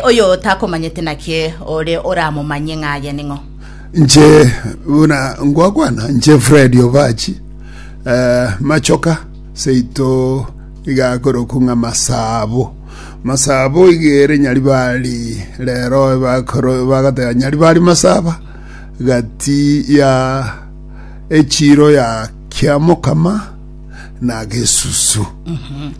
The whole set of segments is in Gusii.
Oyo takomanyete naki ore oramomanye ng'a aye ning'o? Nche buna ngwakwana, nche Fred Obachi, eh, machoka seito iga akorokwa ng'a Masabo. Masabo iga ere Nyaribari rero bakoro bagateba Nyaribari Masaba gati ya echiro ya Kiamokama na Gesusu.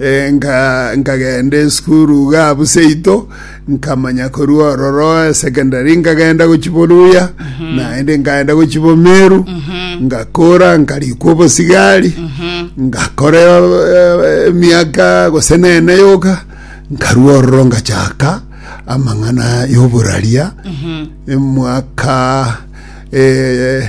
Eh, nka- nkagenda esukuru iga abu seito nkamanya korwa ororo esekendari nkagenda gochibo luya naende nkagenda gochibo meru ngakora nkarikwa obosigari ngakora eh, emiaka gose nene yoka nkarwa ororo ngachaka amang'ana y'oburaria emwaka eh,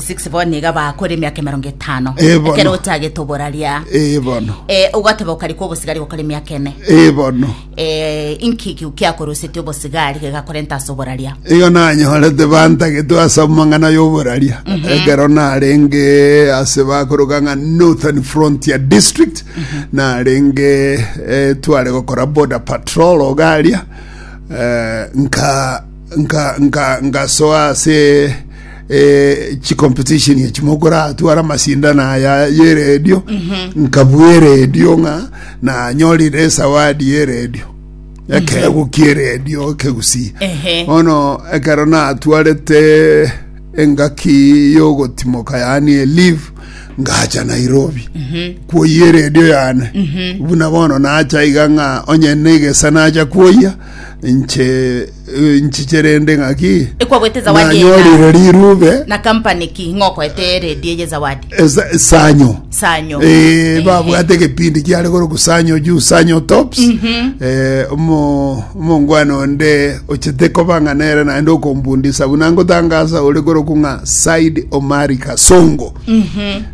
6 bono niga bakore emiaka emerongo etano Eh, bono. ekero otagete oboraria ee bono Eh, ogoteba okarikwa obosigari gokora emiaka ene ee bono Eh, inki ki- kiakoroseti obosigari gegakorenta ase oboraria igo nanyorete bantagetwe ase amang'ana y'oboraria ekero narenge ase bakoroka ng'a northern frontier district narenge eh, tware gokora border patrol ogaria eh, nka ngasoa ase chicompetition echi mokoratwara amasindano aya y'eredio nkabua eredio ng'a nanyorire esawadi y'eredio ekeegwa ki'eredio ekegusii bono ekero natwarete engaki y'ogotimoka yaani elive ngacha nairobi kwoyia eredio yane buna bono nacha iga ng'a onye na egesa nacha kwoyia nche nchiche rende ng'aki Ekwagwete zawadi nanyorire ena. rirube Na company ki ng'okoete eredi eye zawadi. esa- esanyo Sanyo. Eh, babwate ekepindi kiare koroku sanyo juu sanyo tops Eh, omo- omongwana onde ochete koba ng'a nere naende okombundisa buna ngotangasa ore koroku ng'a said omari kasongo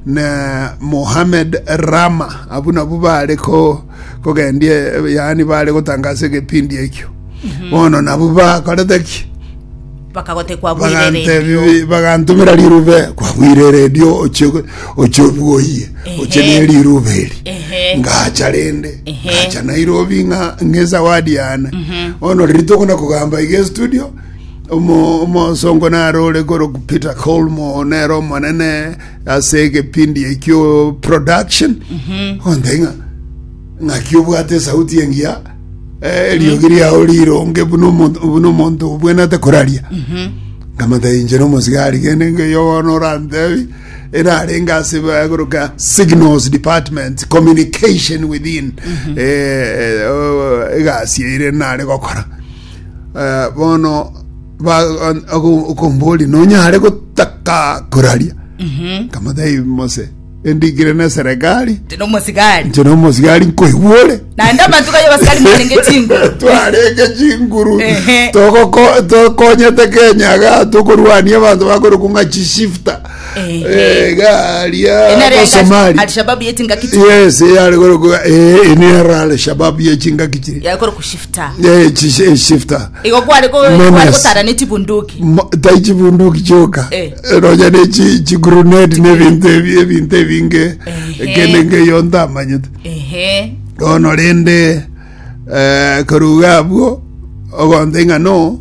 na mohamed rama abu nabu bare ko kogendia, eh, yaani bare gotangasa egepindi ekio. Bono nabwo bakorete ki? bakagote kwabwire redio Bagantebi- bagantumira rirube kwabwire redio oche oche obwoyie oche Ehe. ne rirube eri Ehe. ngacha rende Ehe. ngacha nairobi ng'a ng'esawadi yane bono riri tokona kogamba iga estudio omo- omosongo naro ore koro peter colmo nere omonene ase ekepindi ekio production onde ng'a ng'aki obwate esauti engiya eh, eriogi riao rironge buna omonto buna omonto obwenete koraria nkamata inche nomosigari gende ngeyo bono orantebi erarenge ase bagoroka signals department communication within eh, oh, egasi eire nare gokora Eh, bono okomboria nonyare gotaka koraria kamotebi mose endikire na serikali tino mosigari nche na omosigari nkoigwore naende abanto kayo basikari mwarenge chinguru twarenge chinguru Ehe. togoko- tokonyete kenya ga tokorwania abanto bakorokwa ng'a chishifta Ehe. Eh, garia enare abasomali alishababu yeti ngakiti yes yare korokwa eh, ene yara alshababu yechingaki chiri yakora kushifta Ta. Eh, chi- eh, shifter Igo kware ko- Menace. kware kotara ne chibunduki. Ma- tai chibunduki choka Eh. ronya ne chi- chiguruneti nebinto ebi- ebinto ebinge Ehe. kende ngeyo ntamanyete Ehe. bono rende eh, koruga abwo ogonte ng'a no